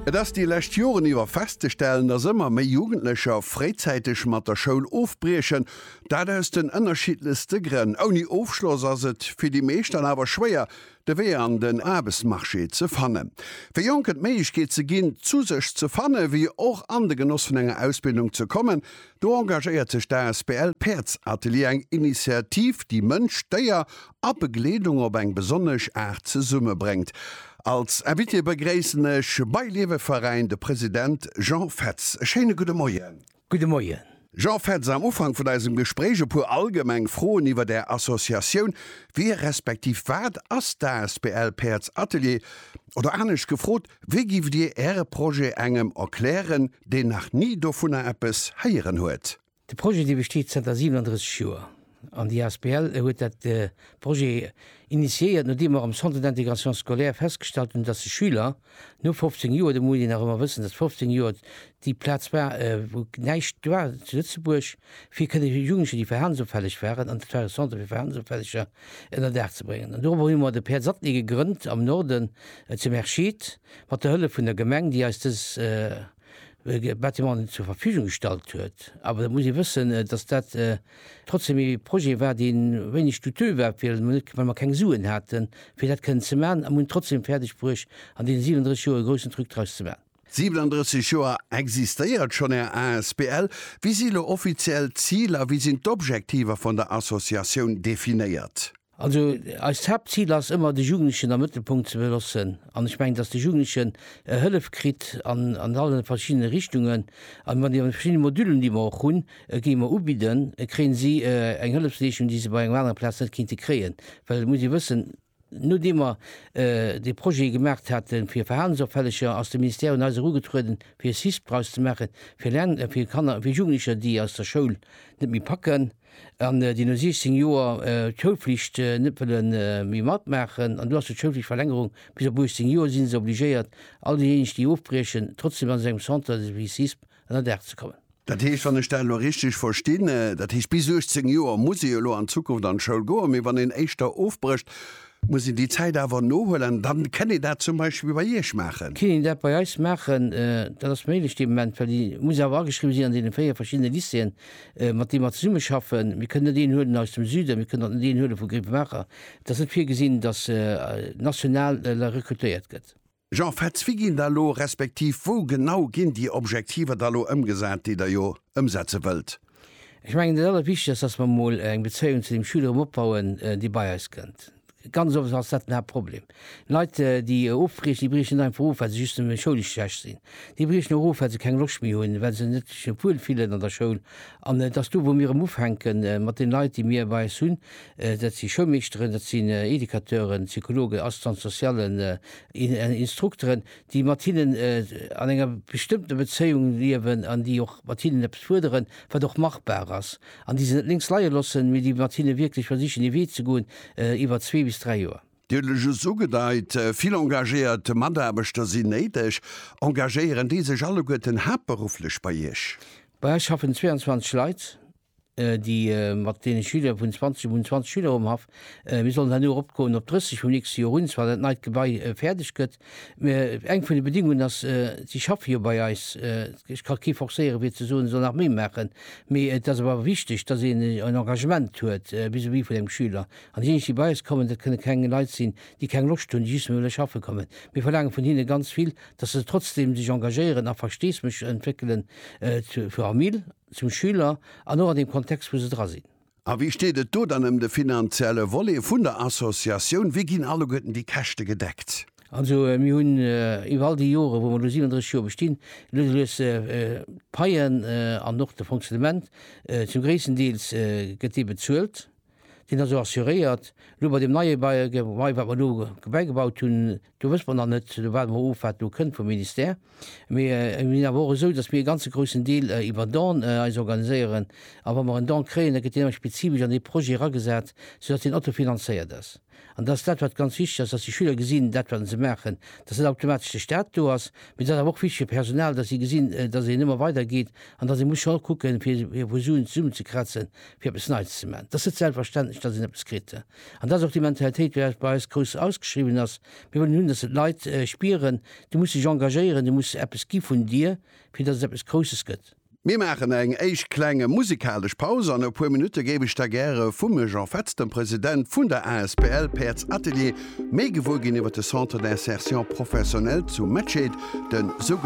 Et ass déi lescht Joren iwwer festzestellen, dass ëmmer méi Jugendlecher fréizäiteg mat der Schoul ofbriechen. Dat aus den ënnerschiddlechste Grënn. Ouni Ofschloss ass et fir déi meescht dann awer schwéier, de Wee an den Aarbechtsmarché ze fannen. Fir Jonken d'Méiglechkeet ze ginn, zu sech ze fannen, wéi och an de Genoss vun enger Ausbildung ze kommen, Do engagéiert sech d'ASBL Päerdsatelier, eng Initiativ, déi Mënsch, Déier a Begleedung op eng besonnesch Aart zesummebréngt. Als Invité begréissen ech bei Lieweveräin de President Jean Fetz. E schéine gudde Moien. Gudde Moien. Jean Fetz, am Ufank vun eisem Gespréich e puer allgemeng Froen iwwer Är Associatioun. Wie respektiv wat ass d'ASBL Päerdsatelier? Oder anescht gefrot, Wéi giff Dir Äre Projet engem erklären, deen nach ni dovunner eppes héieren huet? De Projet dee besteet zënter 37 Joer an déi asbl huet dat Projet initiéiert nodeem mer am Centre d'intégration scolaire festgestallt hunn, datt de Schüler no 15 Joer, do muss een nach ëmmer wëssen, datt 15 Joer déi Plaz war wou näischt war zu Lëtzebuerg fir kënne Jugendlecher déi verhalensofälleg waren, an dat war e Centre fir Verhalensofälleger, ënner Daach ze bréngen. An doropper hu mer de Pär Zattny gegrënnt am Norden zu Merschid, mat der Hëllef vun der Gemeng, déi eis dës Bâtimenten zur Verfügung gestallt huet. Awer et muss ee wëssen, dass dat trotzdem ee Projet war, dee wéineg douteux war, fir emol net, well mer keng Suen haten, fir dat kënnen ze maachen. A mer hunn et trotzdem fäerdegbruecht, an deene 37 Joer e groussen Truc draus ze maachen. 37 Joer existéiert schonn Är asbl. Wéi si lo offiziell d'Ziler a wéi sinn d'Objektiver vun der Associatioun definéiert? Also eist Haaptzil ass ëmmer de Jugendlechen am Mëttelpunkt ze belossen an ech mengen, datt de Jugendlechen Hëllef kritt an an alle verschiddene Richtungen an wann déi verschidde Modülen, déi mer och hunn, géi mer ubidden, kréien si eng Hëllefsleeschung, déi se bei engem anere Plaz net kéinte kréien, well et muss ee wëssen, Nodeem mer dee Projet gemaacht haten fir Verhalensopfälleger, ass de Ministère un eis erugetrueden fir e CISP draus ze maachen, fir Lern fir Kanner a fir Jugendlecher déi eis der Schoul net méi packen an déi no 16 Joer d'Schoulflicht net wëlle méi matmaachen. An do ass jo d'Schoulflichtverlängerung, bis op 18 Joer si se obligéiert, all déijéineg déi ofbriechen, trotzdem an esou engem Centre wéi CISP an der Dag ze kommen. Dat heescht, wann ech dat elo richtig verstinn, dat heescht bis 18 Joer muss ee jo elo an Zukunft an d'Schoul goen, mee wann een éischter ofbrécht, muss een déi Zäit awer nohuelen an dann kënn ee dat zum Beispill bei Iech maachen? Kënn een dat bei eis maachen, dat ass méiglech dee Moment, well déi muss awer ageschriwwen sinn an deene véier verschiddene Lycéeën, mat deene mer zesummeschaffen. Mir kënnen net een huelen aus dem Süden, mir kënnen och net een huele vu Grevenmacher. Et ass net virgesinn, dass national recrutéiert gëtt. Jean Fetz, Wéi ginn da lo, respektiv wou genau ginn déi Objektiver da lo ëmgesat, déi Der jo ëmsetze wëllt? Ech mengen, dat Allerwichtegst ass, dass mer emol eng Bezéiung zu deem Schüler erëm opbauen, dee bei eis kënnt. Ganz oft ass dat den Haaptproblem. Leit, déi ofbriechen, déi briechen net einfach of, well se just nëmme schoulesch schlecht sinn. Déi briechen och of, well se keng Loscht méi hunn, well se net sech wuel fillen an der Schoul. An et ass do, wou mir erëm ufänke mat deene Leit, déi mir bei eis hunn. Dat si Schoulmeeschteren, dat sinn Educateuren, Psychologen, Assistante-sociallen, Instrukteren, déi mat hinnen an enger bestëmmter Bezéiung liewen an déi och mat hinnen eppes fuerderen, wat och machbar ass, an déi se net lénks leie loossen, mee déi mat hinne wierklech versichen ee Wee ze goen iwwer zwee bis dräi Joer. Dir hutt et just ugedeit, vill engagéiert Mataarbechter sinn néideg. Engagéieren déi sech alleguerten haaptberufflech bei Iech? Bei eis schaffen 22 Leit, déi mat deene Schüler vun 20, mir hunn 20 Schüler um Haff, mir sollen herno eropgoen op 30 vum nächste Joer un, zwar dat neit Gebai fäerdeg gëtt. Mir, eng vun de Bedingungen ass, si schaffe jo bei eis, ech ka kee forcéiere fir ze soen, e soll nach méi maachen, mee et ass awer wichteg, datt een en Engagement huet vis-à-vis vun engem Schüler. An déijéineg déi bei eis kommen, dat kënne keng Leit sinn, déi keng Loscht hunn, déi just wëlle schaffe kommen. Mir verlaange vun hinne ganz vill, datt se trotzdeem sech engagéieren a Versteesméch entwéckelen zur Famill. zum Schüler an och an deem Kontext, wou se dra sinn. A wéi steet et do dann ëm de finanzielle Volet vun der Associatioun? Wéi ginn alleguerten déi Käschte gedeckt? Also, mir hunn iwwer all déi Jore, wou mer elo 37 Joer bestinn, lues a lues d'Paien an och de Fonctionnement, zum gréissten Deels gëtt dee bezuelt. Sinn der sou assuréiert. Elo bei deem neie Gebai, wat mer do bäigebaut hunn, do wësse mer nach net, do waarde mer of, wat do kënnt vum Ministère. Mee et sinn awer och esou, datt mir e ganze groussen Deel iwwer Don eis organiséieren. A wa mer en Don kréien, da gëtt deen ëmmer spezifesch an dee Projet eragesat, soudatt deen autofinanzéiert ass. An dat ass dat, wat ganz wichteg ass, dass déi Schüler gesinn, dat, wat se maachen, dass net automatesch de Stat do ass, mee et ass awer och wichteg fir d'Personal, dass si gesinn, dass een ëmmer weidergeet an dass ee muss scho kucken, fir vu Suen zesummenzekrazen, fir eppes Neits ze maachen. Et ass net selbstverständlech, dass een eppes kritt. An dat ass och déi Mentalitéit, déi bei eis grouss ausgeschriwwen ass. Mir wëllen hunn, dass se d'Leit spieren, Du muss dech engagéieren, du muss eppes gi vun dir, fir dass et eppes Grousses gëtt. Mir maachen eng éischt klenge musikalesch Paus an e puer Minutte géif ech da gäre vum Jean Fetz, dem President vun der asbl Päerds Atelier, méi gewuer ginn iwwer de Centre d'insertion professionnelle zu Mettscheed, de sou.